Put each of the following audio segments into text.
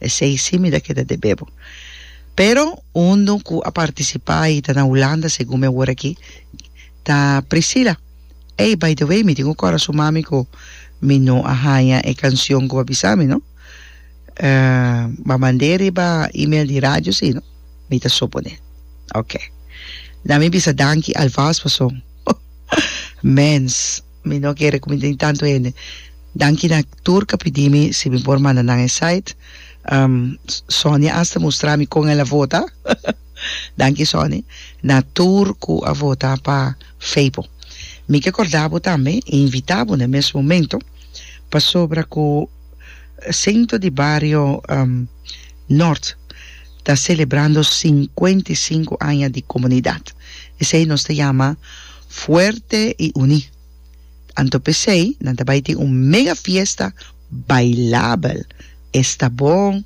Esei si mi ta keda deb'é bo. Pero und'un ku a partisipá i ta na Hulanda segun mi a hoor aki ta Priscilla. Ey, by the way, mi tin un kòrasun mami ku mi no a haña e kansion ku bo a bisa mi no. Bo a mand'é riba email di radio si no? Mi ta suponé. Oke. Na mi bisa danki alvast pasobra mens. Mi no kere ku mi tin tantu hende. Danki na tur ka pidi mi si mi por manda nan e site. Sonia asta mustra mi kon el a vota. Danki Soni. Na tur ku a vota pa Feipo. Mi ke korda bo tambe i invita bo na e mes momento pasobra ku Sento di Bario Nort ta selebrando sinkuenta i sinku aña di komunidat. Esei nos ta yama Fuerte y uní. Anto pesey nan ta bay tin un mega fiesta bailabel. Esta bon.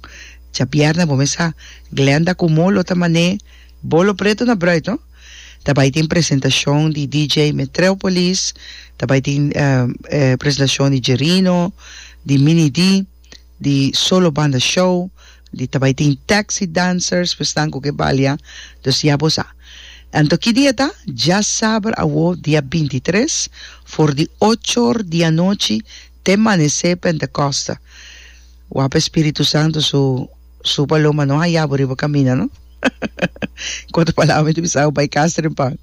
Djabièrnè bo mesa Glenda cu Mo lo ta mané bolo preto na Bruid no. Ta bay tin presentacion di DJ Metreopolis, ta bay tin presentacion di Jerino, di Mini D. di solo banda show, di ta bai tin taxi dancers pa esnan ku ke balia, dus ya bo sa. Anto ki dia ta? Dja saber awo dia binti i tres for di ocho or di anochi te manesé Pentekoste. Wak pa Espíritu Santu su su paloma no haya bo riba kamina no. Ku otro palabra mi ta bisa bo bai kas trempa.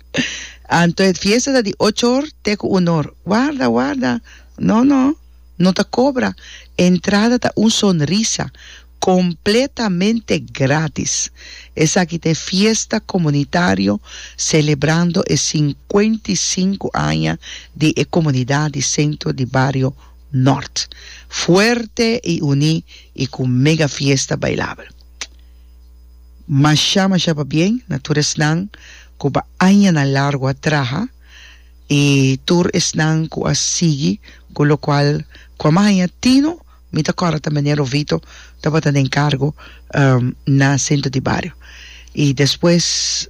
Anto e fiesta ta di ocho or te ku uno or. Warda warda no no. No ta cobra, entrada ta un sonrisa, completamente gratis. Esaki ta e fiesta comunitario celebrando e cincuenta y cinco aña di e comunidad di Centro di Bario Nort. Fuerte y uní y cu mega fiesta bailabel. Masha masha pabien na tur esnan cu pa añanan largo a traha. I tur esnan ku a sigui ku lokual ku a maña Tino, mi ta kòrda ta Mene Rovito tabata den kargo na Sentro di Bario. I despues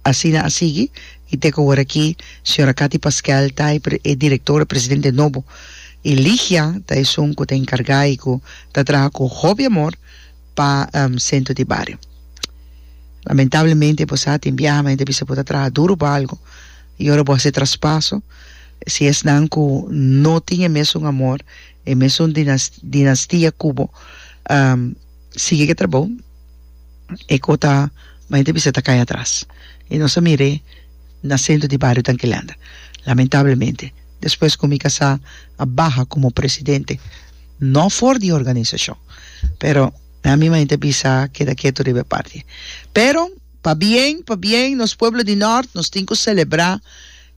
asina a sigui i te ku aworakí señora Cathy Pasquel ta e direktora presidente nobo i Ligia ta esun ku ta enkargá i ku ta traha ku hopi amor, pa sentro di bario. Lamentablemente bo sa tin biaha men ta bisa bo ta traha duru pa algo y ora bo haci traspaso si esnan cu no tin e mesun amor, e mesun dinastia cu bo sigui ke trabou e co ta men ta bisa ta cay atras y nos a mire na centro di bario Tanquilanda lamentablemente despues cu mi casa a baha como presidente. No for di organisashon. Pero mi a mima yete bisa keda ketu riba e parti. Pero pa bien pa bien nos pueblo di Nort nos tin ku selebrá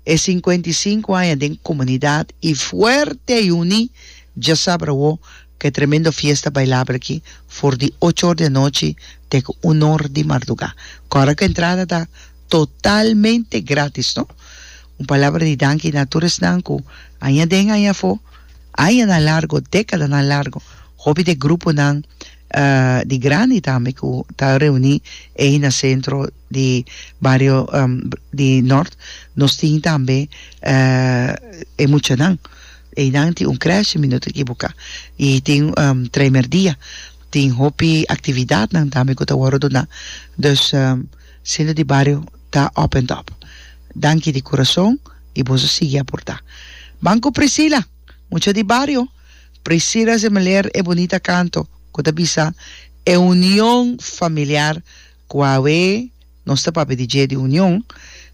e sinkuenta i sinku aña den komunidat i fuerte i uní dja sabra awo ku e tremendo fiesta bailabel aki for di ocho or di anochi te ku un or di mardugá ku ora ku entrada ta totalmente gratis no. Un palabra di danki na tur esnan ku aña den aña afó. Añanan largu, dékadanan largu, hopi di e gruponan di grandi tambe ku ta reuní ei na sentro di bario di Nort, nos tin tambe e muchanan. Einan tin un krèsh, si mi no ta ekiboká, i tin tremerdía. Tin hopi aktividatnan tambe ku ta wòrdu duná. Dus, sentro di bario ta òp èn tòp. Danki di kurason. i boso sigui a portá. Ban ku Priscila, mucha di bario, Priscila se meler e bunita kanto ku ta bisa E union familiar ku awe nos ta papia di dje di union,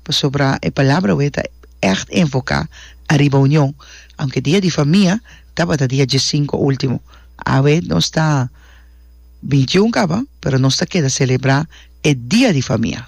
pasobra e palabra awe ta ègt enfoká ariba union. Aunke dia di famia tabata dia diesinko último, awe nos ta bintiun kaba, pero nos ta keda selebrá e dia di famia.